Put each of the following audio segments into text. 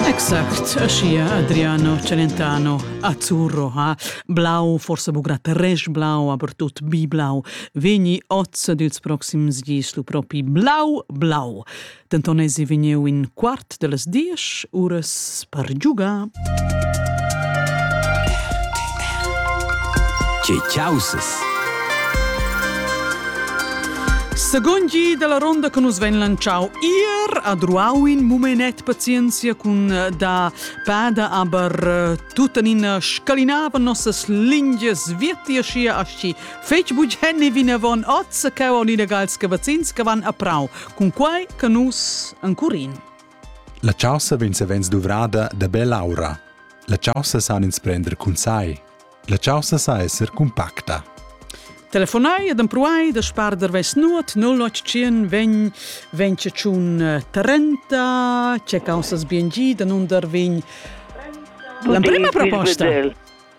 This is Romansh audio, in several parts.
Exact, aschia Adriano Celentano, azzurro ha blau, forse bugrà resch blau, aber tut biblau, vegni oz dels proxims gis lu propi blau, blau. Dentonesi vegniu in quart dellas diesch uras per giugar Che caussas! Secund gi dalla ronda che nus vegn lanciau ir ad ruau in mumenet pazienzia cun eh, da pada aber eh, tuttenina scalinava nossas lingias vietia schia aschi fetg bugenni vinavon oz che on ina gals che vacins che van a prau cun quai che nus ancurin. La chaussa vegn savens duvrada da bell'aura. La chaussa san ins prender cun sai. La chaussa sa esser cumpacta. Telefonai ed empruai da sparder ves nuot 0800 vegn vegn tschun eh, Trenta, che caussas bien gi da nun dar vegn L'emprima proposta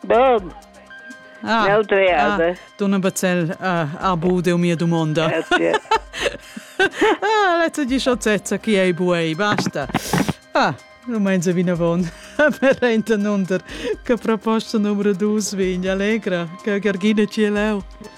Bom! Ah, ah, Donna Bazzell ah, arbu deu mia dumonda. Grazie. ah, l'azza di sciocchezza chi ei buei, basta. Ah, nu meins vinavon. per enta nunder che proposta numero 2 vegn allegra, che Gergina ci leu.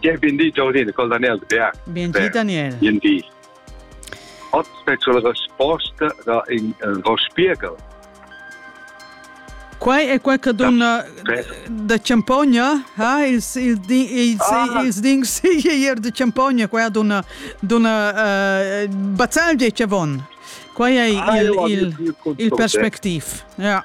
Bien bindi Jolene, col Daniel de Berg. Bien di Daniel. Bien di. Ottime sulla risposta da in uh, Ro Spiegel. Quai è quel che donna da Ciampogna, ha ils il ils ah. ils dings ier de Ciampogna, quella donna donna uh, bazzaglia che von. Quai è ah, il il, il perspectiv. Ja.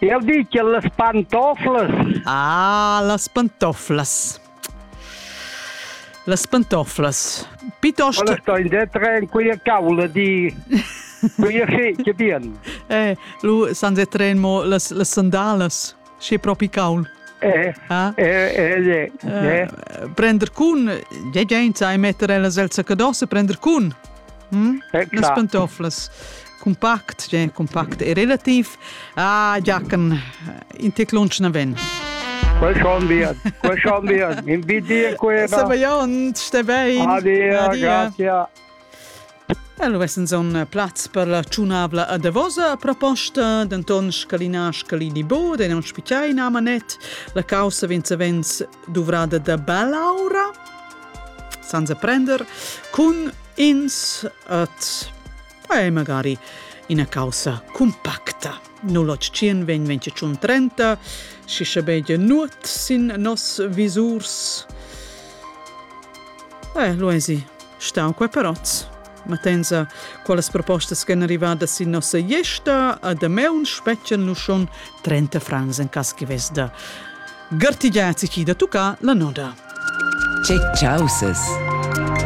Eu di che las pantoflas. Ah, las pantoflas. Las pantoflas. Piuttosto... Quella sto in detre in quella cavla di... quella sì, che bien. Eh, lu san detren mo las, las sandalas. Sche propi caul. Eh, ah? eh, eh, eh, eh. Prender cun, ja gente, e metter ellas el zaccadosse, prender cun. Hm? Eh, Las pantoflas. compact, gen compact e relativ, ah, giacan in tec lunsch naven. Quel schon wir, quel schon wir, in bidir quera. Se baion, ste bein. Adia, grazie. Allora, es un plaz per la tschunabla a Davosa proposta, denton scalina scalini bo, de non spicchiai in amanet, la causa venza venz duvrada da belaura, senza prender, cun ins at Quai è magari ina caussa cumpacta. Nul'otschien vegn 2030, schi schabegia nuot sin noss visurs. Eh, Luesi, stau qua perozz. Ma tensa, qualas propostas ch'en arrivadas sin nossa iesta, a dameun spetgan lu schon 30 francs en cas che vesda. Gartigiazi chi da tucca la noda. Che chausas!